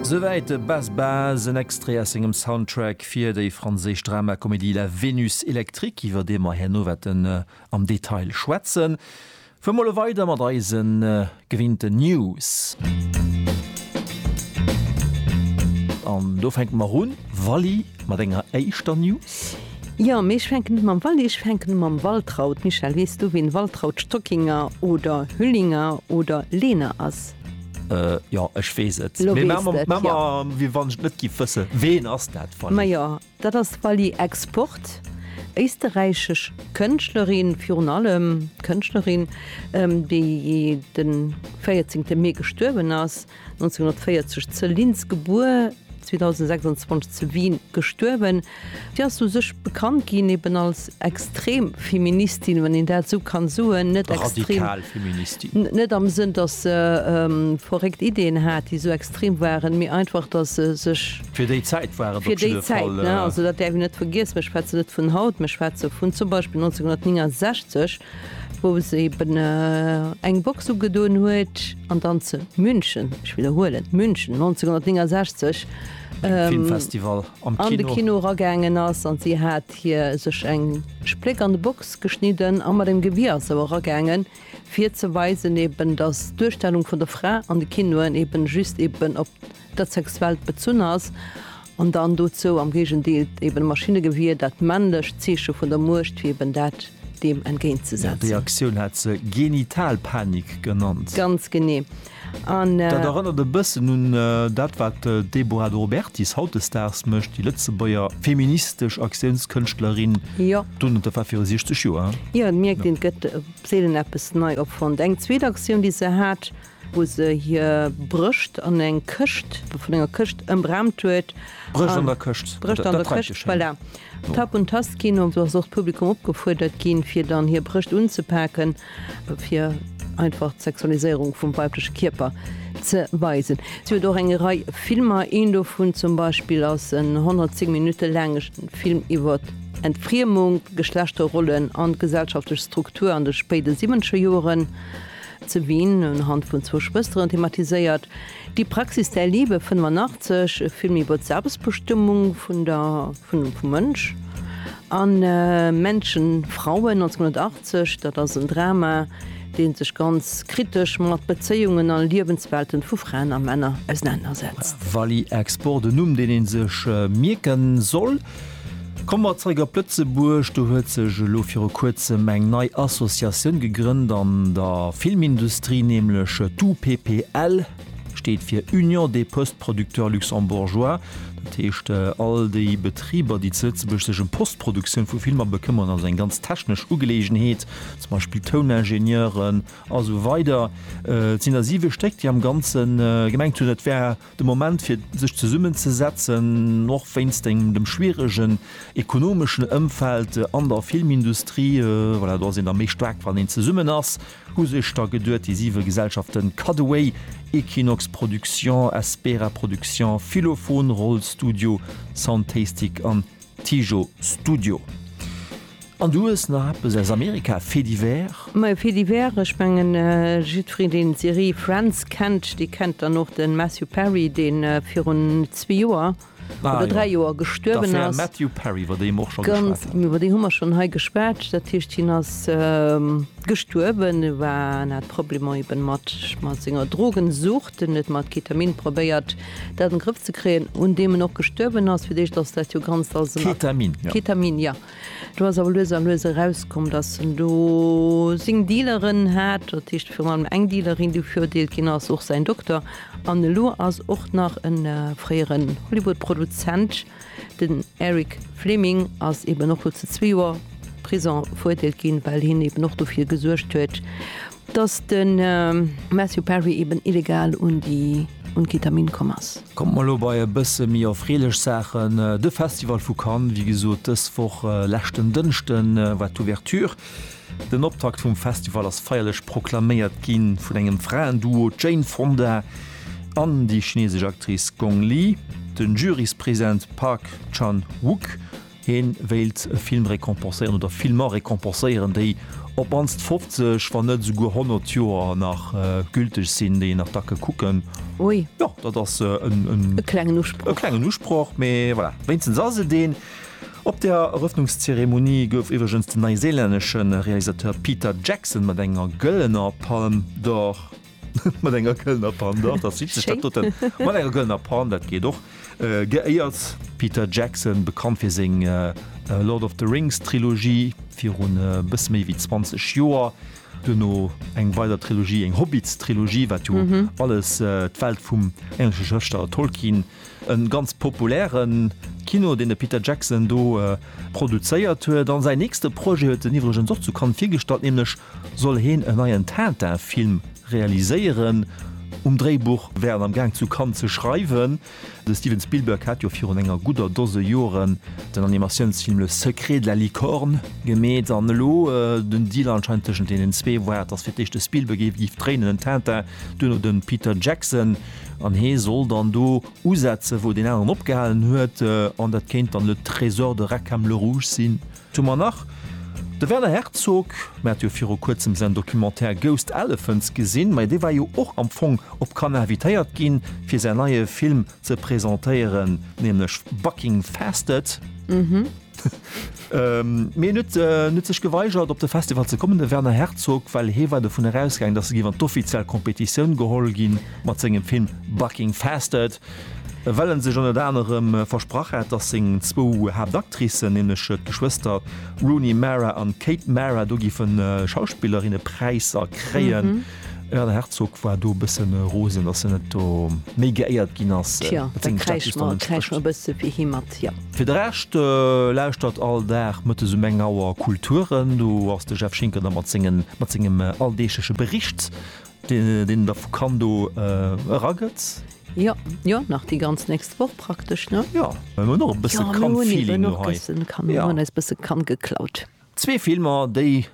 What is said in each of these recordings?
Souwäit de Bas Bas, en Extrait aus sengem Soundtrack fir déi franséisch Dramacomédie La Vénus électrique, iwwer dee mer herno wäerten am Detail schwätzen. Fuer mol e weider mat eise gewinnten News. An do fänke mer un, Wally, mat enger éischter News. Jo, mee ech fänken net mam Wally, ech fänken mam Waltraud. Michèle, weess du, wien Waltraud Stockinger oder Hüllinger oder Lehner ass? et. Jo ech weess et. Lo weess de et, jo. Wéi wann ech et net giff wëssen. Ween ass dat Fally? Ma jo, dat ass d'Fally Export, éisterräichesch Kënschtlerin, virun allem Kënschtlerin, déi den 14 Mee gestuerwen ass, 1940 ze Linz gebuer, 2026 zu Wien gestuerwen. Déi ass u sech bekannt ginn eben als extrem Feministin, wann een dat esou kann soen, net extrem. Radikal Feministin. Net am Sënn, dass se verréckt Ideeën hat, déi esou extrem waren, mee einfach, dass se sech. Fir déi Zäit war et op jidde Fall. Fir déi Zäit, ne? Also dat däerf een net vergiessen. Ech schwätze net vun haut, mä ech schwätze vun zum Beispill 1969, wou se eben eng Box ugedoen huet an dann zu München, ech widderhuelen, München 1969, Filmfestival. an de Kino eragaangen ass an si hat hir sech eng Spléck an de Box geschnidden a mat engem Gewier ass se eragaangen fir ze weisen eben dass d'Duerstellung vun der Fra an de Kinoen eben just eben op dat Sexuellt bezunn ass an dann dozou am Géigendeel eben d'Maschinnegewier, dat männlecht Zeeche vun der Muecht, fir eben dat deem entgéint ze Jo, déi setzen. Aktioun hat se Genitalpanik genannt. Ganz genee. Dat erënnert e bëssen un dat, wat d'Deborah De Robertis hautdesdaags mécht, déi Lëtzebuerger feministesch Aktiounskënschtlerin, dunn et war viru 60 Joer. Jo, et mierkt een, et gëtt seelen eppes nei opfonnt. Eng zweet Aktioun, déi se hat, wou se hir Brëscht an eng Këscht, vun enger Këscht ëmraamt huet. Brëscht an der Këscht, dat trefft sech schéin. Voilà. Tap und Tast Kino, do ass och d'Publikum opgefuerdert ginn, fir dann hir Brëscht unzepaken. fir einfach d'Sexualiséierung vum weibleche Kierper ze weisen. Si huet och eng Rei Filmer, een dovun zum Beispill ass en 110 Minutte laange Film iwwer Entfriemung, Geschlechterrollen an d'gesellschaftlech Struktur an de spéide siwwenzeger Joren zu Wien unhand vun zwou Schwësteren thematiséiert. Die Praxis der Liebe 85, e Film iwwer d'Selbstbestëmmung vun der, vun dem, vum Mënsch an Männchen, Frauen, 1980. Dat ass en Drama, dee sech ganz kritesch mat Bezéiungen a Liewenswelten vu Fraen a Männer ausenanersetzt. Valley Export, en Numm, deen ee sech mierke soll. Komme mer zréck op Lëtzebuerg. Do huet sech elo viru kuerzem eng nei Associatioun gegrënnt an der Filmindustrie, nämlech d'UPPL, steet fir Union des Postes Producteurs Luxembourgeois. Dat heescht, all déi Betriber, déi zu Lëtzebuerg sech ëm Postproduktioun vu Filmer bekëmmeren, also eng ganz technesch Ugeleegenheet, zum Beispill Touningenieuren a sou weider, et sinn der siwe Stéck, déi am Ganze gemengt hunn, et wär De Moment fir sech zesummen ze setzen, och wéinst engem dem schwieregen ekonomeschen Ëmfeld an der Filmindustrie, voilà, do ass een da méi staark wann een zesummen ass, hu sech da geduet déi siwe Gesellschaften Cutaway, Equinox Productions, Espera Productions, Philophon, Roll Studio, Soundtastic an Tijo Studio An du hues nach eppes aus Amerika, Fait divers? Ma e Fait divers, ech mengen jiddwereen deen d'Serie Friends kennt, dee kennt dann och de Matthew Perry, dee virun zwee Joer oder dräi Joer gestuerwen ass. D'Affär Matthew Perry, iwwer déi mer och scho geschwat hunn. Ganz, iwwer déi hu mer schonn hei geschwat. Dat heescht, hien ass gestuerwen, war, hat Problemer eben mat senger Drogensucht. Den huet mat Ketamin probéiert dat an de Grëff ze kréien, un deem en och gestuerwen ass. Fir d'éischt ass dat jo ganz als en. Ketamin, jo. Ketamin, ja. Do ass awer lues a lues erauskomm, datt en do seng Dealeren hat, dat heescht virun allem eng Dealerin, déi verurdeelt ginn ass, och säin Dokter. An elo ass och nach e fréieren Hollywood-Produzent, den Eric Fleming, ass eeben och lo zu zwee Joer Prison verurdeelt ginn, well hien eeben och dofir gesuergt huet, Dass de Matthew Perry eben illegal un Ketamin komm ass. Kommt mer elo bei e bësse méi erfreelech Saachen. De Festival vu Cannes, wéi gesot dës Woch leschten Dënschde war d'Ouverture. Den Optakt vum Festival ass feierlech proklaméiert gi vun engem Fraenduo, d'Jane Fonda an déi chinesesch Actrice Gong Li. Den Juryspräsident Park Chan-wook Hie wéilt e Film récompenséieren oder Filmer récompenséieren, déi op d'mannst 50, wann net esouguer 100 Joer nach gülteg sinn, déi een nach dacke kucken. Ui. Jo, dat ass e klengen Usproch. E klengen Usproch, mee voilà, wéinstens ass et een. Op der Erëffnungszeremonie gouf iwwregens den neiseelännesche Realisateur Peter Jackson mat enger gëllener Palme d'Or. Mat enger gëllener Pan, doch, dat sieht sech dat Schéin. doten. Mat enger gëllener Pan, dat geet och. Äh, geéiert. Peter Jackson, bekannt fir seng äh, Lord of the Rings Trilogie virun e äh, bësse méi wéi 20 Joer, duerno eng weider Trilogie, eng Hobbits Trilogie, wat jo alles äh, d'Welt vum englesche Schrëftsteller Tolkien, E ganz populäre Kino, deen de Peter Jackson do produzéiert huet. An säin nächste Projet huet en iwwregens och zu Cannes virgestallt, nämlech soll heen en neien Tintin-Film realiséieren. Um Dréibuch wär en am Gaang zu Cannes ze schreiwen. De Steven Spielberg hat jo virun enger gudder Dose Joren den Animatiounsfilm Le Secret de la Licorne gemeet. An elo den Deal anscheinend tëschent deenen zwee war, datt fir d'éischt de Spielberg géif dréinen, den Tintin, duerno de Peter Jackson. An hee soll dann do usetzen, wou deen aneren opgehalen huet. An dat kéint dann le Trésor de Reckhem-le-Rouge sinn. D'hu mer nach. De Werner Herzog, mir hate jo viru Kuerzem säin Documentaire Ghost Elephants gesinn, ma dee war jo och am Fong op Cannes invitéiert ginn, fir säin neie Film ze presentéieren, nämlech Bucking Fasted. Mee en huet sech geweigert op de Festival ze kommen, de Werner Herzog, well hee war dovun erausgaangen, datt e géif an d'offiziell Kompetitioun geholl ginn mat sengem Film Bucking Fasted, well en sech ënnert anerem versprach hat, datt seng zwou Haaptactricen, nämlech d'Geschwëster Rooney Mara an Kate Mara, do géife Schauspillerinnepräisser kréien. Ja, den Herzog war do e bëssen rosen, dass en net do méi geéiert ginn ass. Tja, da kräische mer, kräische mer e bësse wéi hie mat, jo. Fir de Rescht, lauschtert all Dag mëttes um eng Auer Kulturen. Do ass de Jeff Schinker da mat sengen, mat sengem alldeegleche Bericht, deen, deen en da vu Cannes do eragëtt. Jo, jo, nach déi ganz nächst Woch praktesch, ne? Jo, mir hunn och e bësse Cannes-Feeling do hei. Jo, mir hunn och e bëssen Cannes, mir hunn eis e bësse Cannes geklaut. Zwee Filmer, déi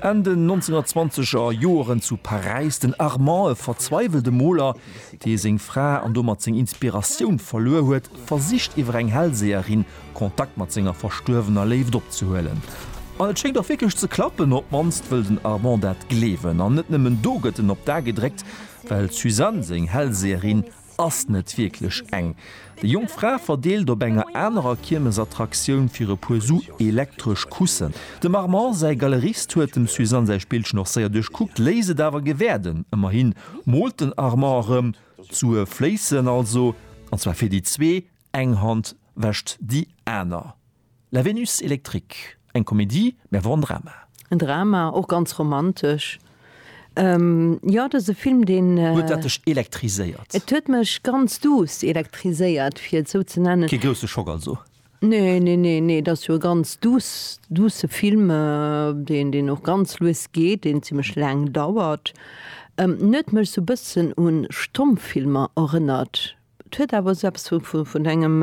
Enn den 1920 er Joeren zu Paräis, den Armand, e verzweiwelte Moler, dee seng Fra an domat seng Inspiratioun verluer huet, versicht iwwer eng Hellseherin Kontakt mat senger verstuerwener Léift opzehuelen. An et schéngt och wierklech ze klappen, op d'mannst wëll den Armand dat gleewen. An net nëmmen do gëtt en op d'A gedréckt, well d'Suzanne, seng Hellseherin, Ass net wierklech eng. Déi jonk Fra verdeelt op enger anerer Kiermesattraktion fir e puer Su elektresch Kussen. Dem Armand säi Galerist huet dem Suzanne säi Spillchen och séier duerchkuckt, léisst et awer gewäerden. Ëmmerhi moolt den Armand erëm, d'Sue fléissen also, an zwar fir déi zwee, eng Hand wäscht déi aner. La Vénus électrique, eng Komedie, mä awer och en Drama. En Drama, och ganz romantesch. Jo, dat ass e Film, deen. Huet dat dech elektriséiert? Et huet mech ganz duuss elektriséiert, fir et esou ze nennen. Kee grousse Schock also? Nee, nee, nee, nee, et ass jo e ganz duuss, duusse Film, deen, deen och ganz lues geet, deen zimlech laang dauert. En huet mech esou e bëssen u Stommfilmer erënnert, Et huet awer esou eppes vun engem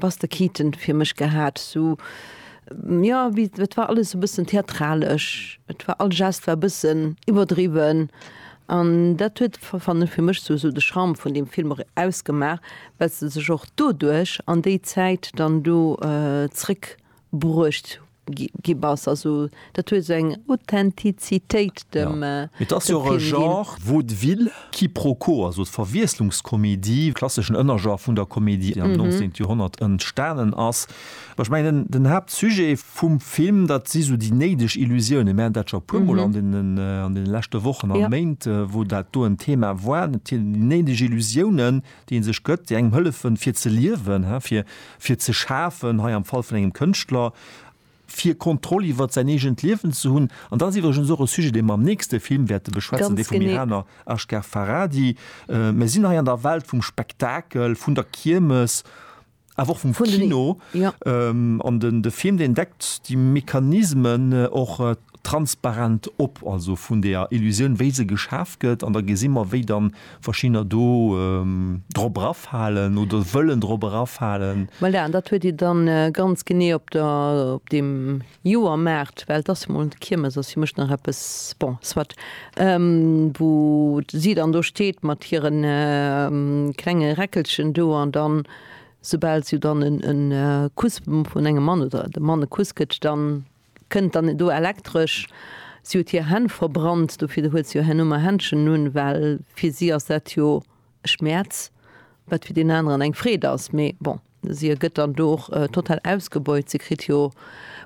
Buster Keaton fir mech gehat, esou, jo, wéi, et war alles esou e bëssen theatralesch, et war, all Gest war e bëssen iwwerdriwwen. An dat huet, fannen ech, fir mech esou, esou de Charme vun deem Film och ausgemaach, well se sech och doduerch an déi Zäit dann do zrëckbruecht gi bass, also dat huet esou eng Authentizitéit dem Film ginn. Et ass jo och e Genre, Vaudeville, Quiproquo, also Verwiesslungskomedie, klasseschen Ënnergenre vun der Komedie, am 19. Joerhonnert entstanen ass. Mä ech mengen, den Haaptsujet vum Film, dat si sou déi néideg Illusiounen. Mir haten dat scho e puermol an deene leschte Wochen a Méint, wou dat do en Thema war, déi néideg Illusiounen, deen sech gëtt, déi engem hëllefen fir ze liewen, fir fir ze schafen, hei am Fall vun engem Kënschtler, fir Kontroll iwwert säin eegent Liewen ze hunn. An dat ass iwwregens och e Sujet, dee mer am nächste Film wäerte beschwätzen, dee vum Iraner Asghar Farhadi. Mir sinn hei an der Welt vum Spektakel, vun der Kiermes. awer och vum Kino an den de Film deen deckt déi Mechanismen och transparent op, also vun der Illusioun wéi se geschaf gëtt an da gesi mer wéi da verschiddener do drop erafalen oder wëllen drop erafalen. Voilà, an dat huet Dir da ganz genee op der op deem. Joer maacht, well et ass jo mol d'Kiermes, ass jo mech nach eppes, bon, soit, wou si dann do steet mat hire klenge Räckelchen do an dann, soubal se jo dann e Kuss vun engem Mann oder de Mann e Kuss gëtt, dann kënnt dann do elektresch, si huet hir Hänn verbrannt, dofir huet se jo herno mar Händschen un, well fir si ass dat jo e Schmäerz, wat fir deen aneren eng Freed ass, mee bon. Si gëtt dann do och total ausgebeut, si kritt jo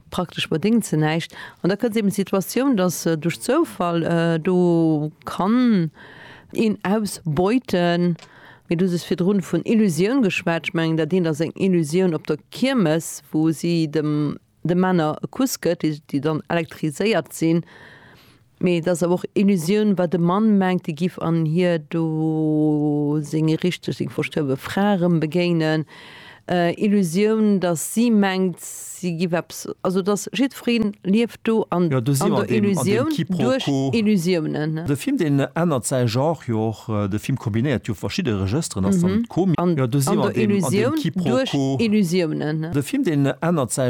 praktesch mat ding ze näischt. An da kënnt eben d'Situatioun, datt duerch Zoufall do kann een ausbeuten. Mee du hues virdrun vun Illusioun geschwat, ech mengen dat eent ass eng Illusioun op der Kiermes, wou si dem de Männer e Kuss gëtt, déi dann elektriséiert sinn. Mee et ass awer och Illusioun, wat e Mann mengt, dee giff an hir do seng richteg, seng verstuerwe Fra erëm begéinen. Illusioun, datt si mengt, si giff eppes, also datt jiddweree lieft do an der Illusioun duerch Illusiounen. De Film, deen ännert säi Genre jo och. De Film kombinéiert jo verschidde Regësteren, ass dann d'Komik. An der Illusioun duerch Illusiounen. De Film, deen ännert säi.